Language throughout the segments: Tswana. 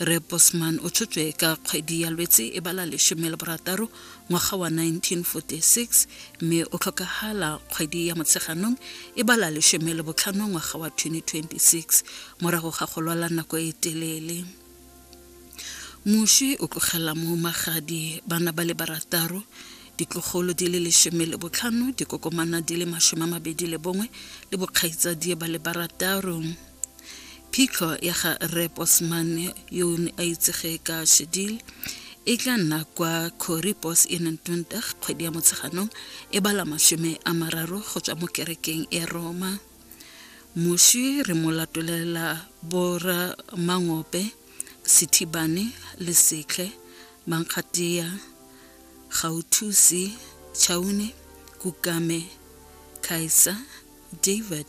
Re Bosman o tshotswe ka kgwedi ya Lwetse e bala lesome le borataro ngwaga wa 1946 mme o tlhokagala kgwedi ya Motsheganong e bala lesome le botlhano ngwaga wa 2026 morago ga go lwala nako e telele. Moswi o tlogela mo magadi bana ba le barataro ditlogolo di le lesome le botlhano dikokomana di le masome a mabedi le bongwe le bokgaitsadie ba le barataro. Phitlho ya ga Rre Bosman yo ne a itsege ka Shedil e tla nna kwa Corribos e neng 20 kgwedi ya Motsheganong e bala mashome a mararo go tswa mo kerekeng ya Roma. Moshi re mo latolela bora Mangope, Sithibane, Lesetlhe, Mankgatia, Gauthusi, Chaune, Kukame, Kaisa, David,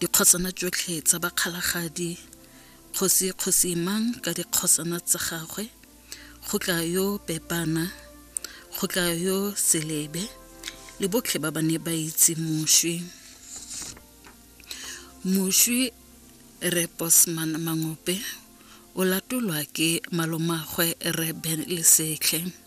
dikgosana tsotlhe tsa bakgalagadi kgosi kgosi mang ka dikgosana tsa gagwe go tla yo pepana go tla yo selebe le botlhe ba ba ne ba itse moswi moswi re bosman mangope o latolwa ke malomagwe re ben lesetlhe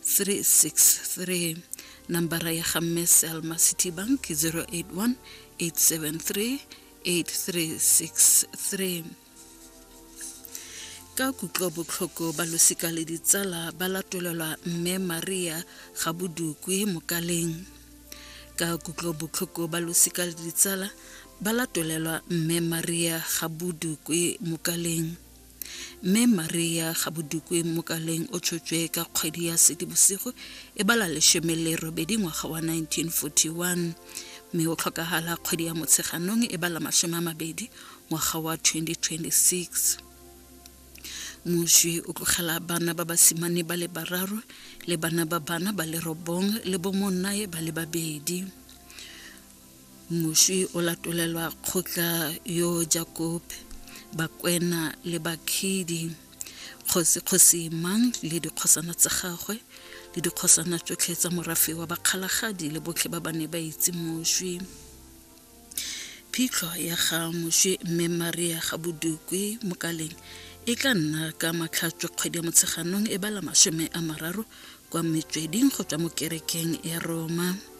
363 nambara ya ga mme selma city bank 081 873 8363 ka kutlobotlhoko ba losika le ditsala ba latolelwa mme maria ga bodukwe mokaleng ka kutlobotlhoko ba losika le ditsala ba latolelwa mme maria ga bodukwe mokaleng Mme Maria Gabodukwe Mokaleng o tshotswe ka kgwedi ya Sedibosigo e bala leshome le robedi ngwaga wa 1941 mme o tlhokagala kgwedi ya Motsheganong e bala masome a mabedi ngwaga wa 2026 moswi o tlogela bana ba basimane ba le bararo le bana ba bana ba le robong le bomonnae ba le babedi Moswi o latolelwa kgotla yo Jakobe, bakwena le bakhidi, kgosi kgosi mang le dikgosana tsa gagwe le dikgosana tsotlhe tsa morafe wa bakgalagadi le botlhe ba ba ne ba itse moswi. Phitlho ya ga moswi mme Maria ga Bodukwe Mokaleng e tla nna ka matlhatswe kgwedi ya Motsheganong e bala masome a mararo kwa metsweding go tswa mo kerekeng ya Roma.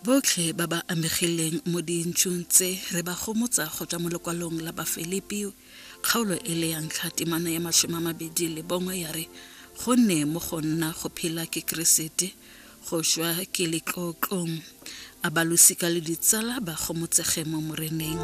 Botlhe ba ba amegileng mo dintsung tse re ba gomotsa go tswa mo lekwalong la Bafilipi kgaolo e le ya ntlha temana ya masome a mabedi le bongwe ya re gonne mo go nna go phela ke Keresete go šwa ke letlotlong a balosika le ditsala ba gomotsege mo moreneng.